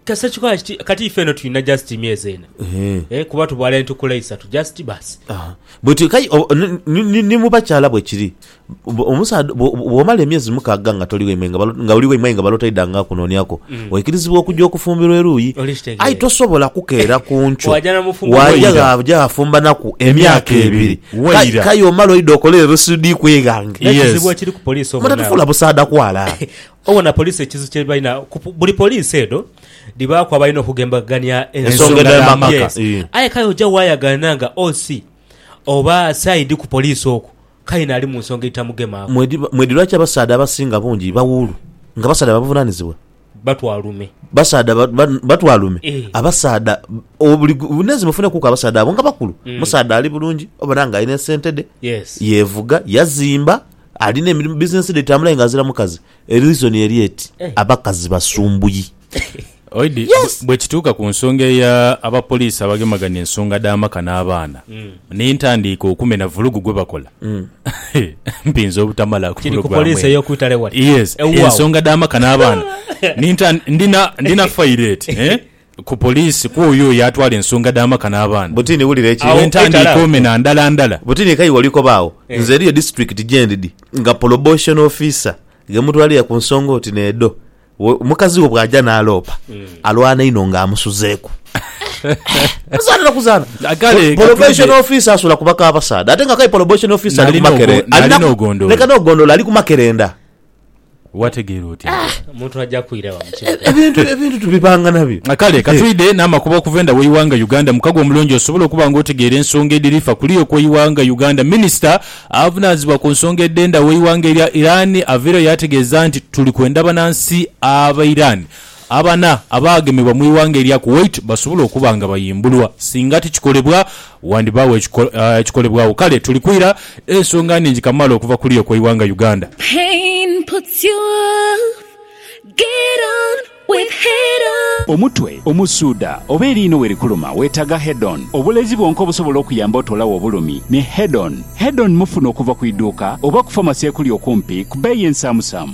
Kasita kikola kiti, kati ife eno tulina just myezi ena eh, kuba tubwala entukula isatu just basi. Aha. Bwetyo kai o- o- ni- ni- ni- ni mu bakyala bwe kiri. Bw- Omusaadha bw- bw- bw'omala emyezi mukaaga nga toli waimwe nga balo- nga oli waimwe aye nga baloota idha nga akunooniaku, oikirizibwa okugya okufumbirwa eruuyi. Oli kitegeera. Aye tosobola kukeera ku nkyo Waaja n'amufumba waaja waira. ghaaja ghafumbanaku emyaka ebiri. Waira. Kai- Kai omala oidha okola erusudiiku eghange. Yes. Ekizibu ekiri ku poliisi obo Mata nabo. tufuula busaadha kwala. Obona poliisi ekizibu kye balina, buli poliisi edho dhibaaku abalina okugembagania ensonga edh'amaka. Aye kale oja waayagaana nga OC oba sayidi ku poliisi okwo, kale naali mu nsonga edhitamugemaaku. Mwidhi lwaki abasaadha abasinga bungi bawuulu nga basaadha ba buvunaanizibwa? Batwalume. Basaadha batwalume. Abasaadha buli bunenzi bufunekuuku abasaadha abo nga bakulu. Omusaadha ali bulungi obona nga alina esente dhe, yeevuga, yazimba, Alina emirimu business dhe dhitambula aye nga azira mukazi e reason eri eti abakazi basumbuyi. Oidi, Yes! Bwekituuka ku nsonga eya abapoliisi abagemaganya ensonga dh'amaka n'abaana n'entandiika okumena vulugu gwebakola, mpinza obutamala ku Kiri ku pulogulaamu poliisi eno. ey'oku itale wali. Yes, Ewuwawo. ensonga dh'amaka n'abaana. Ninta- ndina- ndina file eti, eh? ku poliisi kwoyo oyo atwala ensonga dh'amaka n'abaana. Butini wulira eki. Agho ntandiika omena ndala ndala. Butini eka y'oli kobagho nze eriyo disitulikiti gyendidi nga poloboshono ofiisa ghe mutwalira ku nsonga oti n'edho. Mukazi wo bw'aja n'aloopa alwana inho nga amusuzeeku. Kuzaana na kuzaana. Kale katwidhe. Poloboshono ofiisa asula ku baka abasaadha ate nga aye poloboshono ofiisa ali ku makerenda. Nali n'ogondolo. Leka n'ogondolo ali ku makerenda. Wategeera otya? Ah, omuntu aja kwira wa mukibuga. E, ebintu ebintu tubipanga nabyo. Ah, kale katwide n'amakubo okuva enda w'eighanga Uganda. Mukago omulungi osobola okuba nga otegeera ensonga edhiri fa kuliya okw'eighanga Uganda. Minisita avunaanyizibwa ku nsonga edh'enda w'eighanga erya Iran aveereyo yaategeeza nti, Tuli kwenda banansi Abairani Abana abaagemebwa mu ighanga erya Kuwait basobola okuba nga bayimbulwa. Singa tikikolebwa, wandibaagho ekikolebwagho. Kale tuli kwira ensonga nhingi kamaala okuva ku luyoka eighanga Uganda. Omutwe omusuuda oba eriino we likuluma weetaaga Head-On. Obulezi bwonka obusobola okuyamba otoolagho obulumi ni Head-On. Head-On mufuna okuva ku idhuuka oba ku famasi ekuli okumpi ku bbeeyi ensaamusaamu.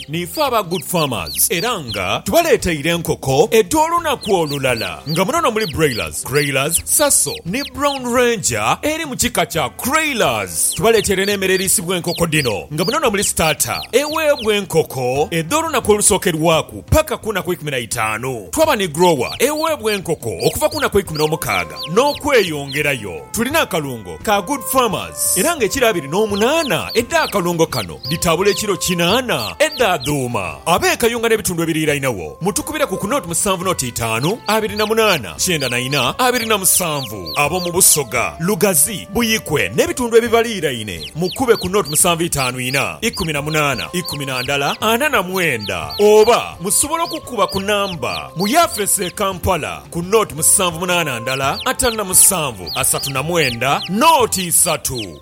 Niife aba Good Farmers era nga tubaleeteire enkoko edh'olunaku olulala nga muno nomuli Broilers, Greylas, Saso ni Brown Ranger eri mu kika kya Craylas. Tubaleeteire n'emere eriisibwa enkoko dhino nga muno nomuli Starter eweebwa enkoko edh'olunaku olusookerwaku paka ku naku ikumi na itaanu. Twaba ni Grower eweebwa enkoko okuva ku naku ikumi n'omukaaga n'okweyongerayo. Tulina akalungo ka Good Farmers era nga ekiro abiri n'omunaana edh'akalungo kano. Dhitabula ekiro kinaana edhaadhuuma. Abeekayunga n'ebitundu ebiriirainagho, mutukubire ku ku noti musanvu noti itaanu, abiri na munaana, kyenda na ina, abiri na musanvu. Ab'omu Busoga, Lugazi, Buikwe n'ebitundu ebibaliiraine, mukube ku noti musanvu itaanu ina, ikumi na munaana, ikumi na ndala, ana na mwenda. Oba musobola okukuba ku namba mu yaafeesi e Kampala ku noti musanvu munaana ndala, ataanu na musanvu, asatu na mwenda, noti isatu.